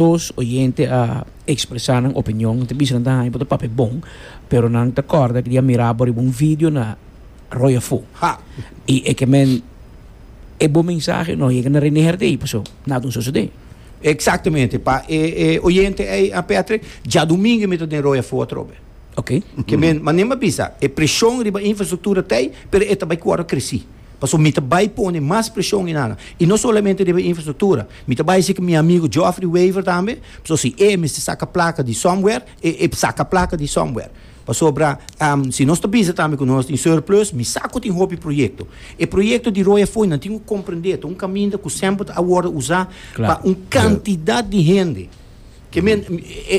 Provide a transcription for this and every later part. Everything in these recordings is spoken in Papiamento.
Dos oyente a expresa nan opinion, nan ta bisa nan ta haña bo ta papia bon, pero nan ta corda cu di a mira bo riba un video na Roy Afo. Ha! Y e ke men e bo mensahe no yega na Rene Herdey, paso nada un sosode. Exactamente, pa e e oyente ey a Patrick, djadomingo mi ta den Roy Afo atrobe. Oké. Ke men, manera mi a bisa, e presion riba infrastructura ta ey, pero e ta bay cu wòrdu creci. Paso mi ta bai pone mas presion in Ana. I no solamente riba infrastructura. Mi ta bai siki mi amigo Geoffrey Wever tambe, paso si e mester saca placa di somewhere, e e saca placa di somewhere. Pasobra si nos ta bisa tambe cu nos tin surplus, mi sa cu tin hopi proyecto. E proyecto di Roya Fooi nan tin cu comprende ta un caminda cu semper ta a wordo usa pa un cantidad di hende. Ke men,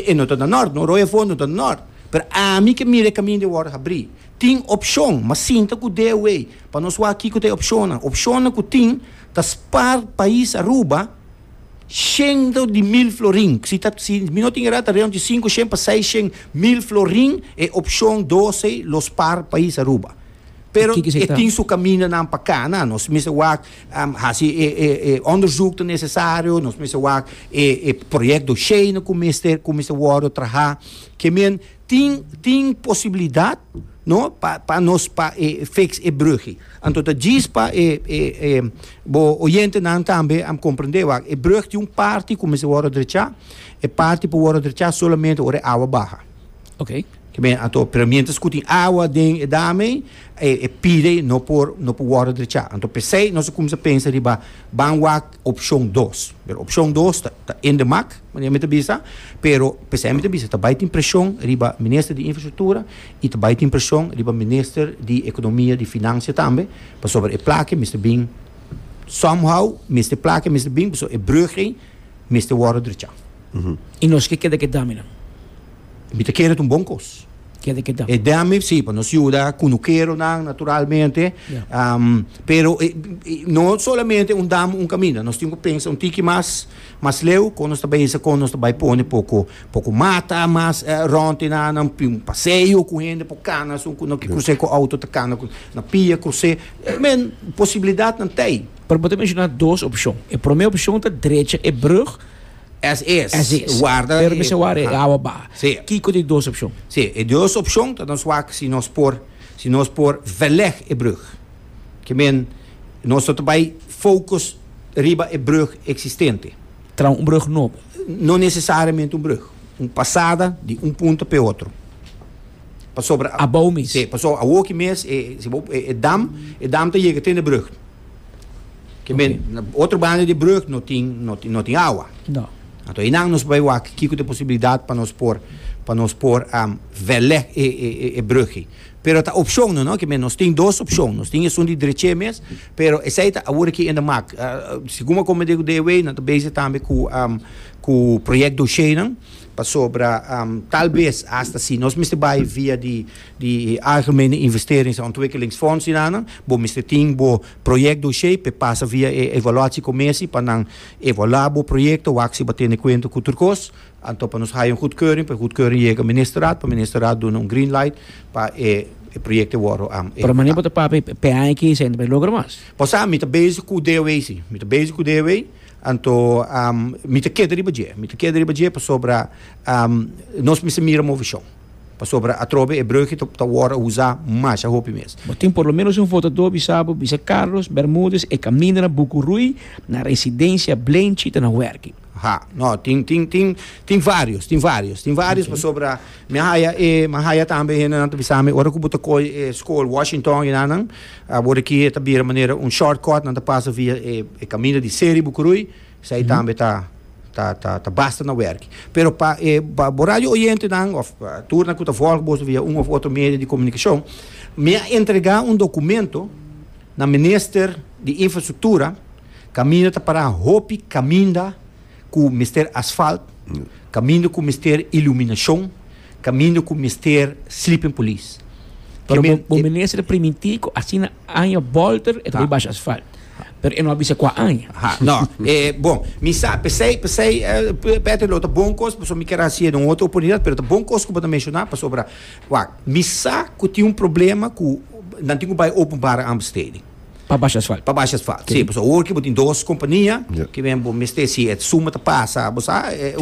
e no ta na nort no, Roya Fooi no ta na nort. Pero ami ke mira e caminda e wordo habri. Tin opshon, ma sinta ku DOA pa nos wak kiko ta e opshonnan. Opshonnan ku tin ta spar pais Aruba shendo di mil florin. Si ta si mi no tin erá ta reon di sinku shen pa seis shen mil florin e opshon doce lo spar pais Aruba. Pero Kiko esei e ta? tin su kamindanan pa kana. Nos mester wak hasi e e e onderzoek ta nesesario, nos mester wak e e proyekdosheinan ku mester ku mester wòrdu trahá. Ke men Tin tin posibilidad no pa pa nos pa e fix e brugge. Anto ta djis pa e e e bo oyentenan tambe a comprende wak e brug tin un parti cu mester wordo drechá, e parti por wordo drechá solamente ora e awa baha. Okay. Ta bien, anto pero mientras cu tin awa den e dam ei e e pide no por no por wordo drechá. Anto p'esey nos a cuminsa pensa riba ban wak Opcion dos, pero opcion dos ta ta ende mak, manera mi ta bisa, pero p'esei mi ta bisa ta bai tin presion riba Minister di Infrastructura y ta bai tin presion riba Minister di Economia, di Financia tambe, pasobra e plak ei mester bin somehow mester plak ei mester bin, pasobra e brug ei mester worde drecha. Y nos ke keda ke daminan. Mi ta kere ta un bon kos. Keda keda. E dami, si, pa nos yuda kunukero nan naturalmente, um, pero e, e, no solamente un dam un kaminda, nos tin ku pensa un tiki mas mas leu kon nos ta bai sa kon nos ta bai pone poko poko mata mas uh, eh, ronte na nan un paseo ku hende po kana sun ku no ki krus'é ku auto ta kana ku na pia krus'é. Eh, men posibilidatnan tei. Pero bo ta menshona dos opshon. E promé opshon ta drecha e brug Es es. Es es. Warda e. Pero mester warda e awa baha. Sí. Kiko di dos opshon? Sí, e dos opshon ta nos wak si nos por si nos por verleg e brug. Ke men nos ta ta bai focus riba e brug existente. Traha un brug nobo. No necesariamente un brug. Un pasada di un punto p'e otro. Pasobra. Abou mes. Sí, pasobra awoki mes e si bo e dam e dam ta yega te n'e brug. Ke men, na otro banda di brug no tin, no tin, no tin awa. No. Anto einan nos bai wak kiko ta posibilidat pa nos por, pa nos por verleg e, e, e, e brugki. Pero ta opshonnan, no, ke men nos tin dos opshon. Nos tin esun di dreche mes, pero esei ta awor aki enda mak. Segun bo kome digu dea wei, nan ta bezig tambe ku, ku proyek dosheinan, pasobra tal bes asta si nos mester bai via di. Di e Algemene Investeerings en Ontwikkelingsfonds di nan, bo mester tin bo project dossier p'e pasa via e evaluatiecomessie pa nan evaluá bo proyecto, wak si bo a tene kuento ku tur kos, anto pa nos haya un goedkeuring, p'e goedkeuring yega Ministerraad, pa Ministerraad duna un green light pa e project te wòrdu an Pero mané bo ta papia p'e aña aki esei no ta bay logra mas? Bo sa, mi ta bezig ku DOE si, mi ta bezig ku DOE, anto mi ta keda riba dje, mi ta keda riba dje pasobra nos mester mira movishon. Pasobra atrobe e breuki ta wòrdu usá masha hopi mes. Bo tin por lo ménos un votadó bisá bo bisa Carlos Bermudez e kaminda na Buku Rui na residensia Blenchi ta na wèrki. Ha, nò, tin, tin, tin, tin vários, tin vários, tin vários pasobra mi a haya e, mi a haya tambe hendenan ta bisá mi ora ku bo ta koi e skol Washington i nan nan a bor aki e ta bira manera un shortcut nan ta pasa via e kaminda di Seri Buku Rui. Esei tambe ta ta basta na werki. Pero pa e bo radio oyentenan of turnan ku ta volg boso via un of otro medio di komunikashon, mi a entregá un dokumento na minister di infrastruktura, kaminda ta pará hopi kaminda ku mester asfalt, kaminda ku mester iluminashon, kaminda ku mester sleeping police. Pero bo minister a primintí ku asina aña bolter e ta bai basha asfalt. Pero e no a bisa kua aña. Aha, no. E, bon, mi sa, pesei, pesei, eh, pe- Petri, lo ta bon kos, paso mi kier hasié den un otro oportunidad, pero ta bon kos ku bo ta menshoná, pasobra, wak, mi sa ku tin un problema ku nan tin ku bai openbare aanbesteding, Pa basha asfalt. pa basha asfalt, si, paso awor ki bo tin dos kompania, Yep. ki men bo mester, si e suma ta pasa, bo sa, eh, Oké.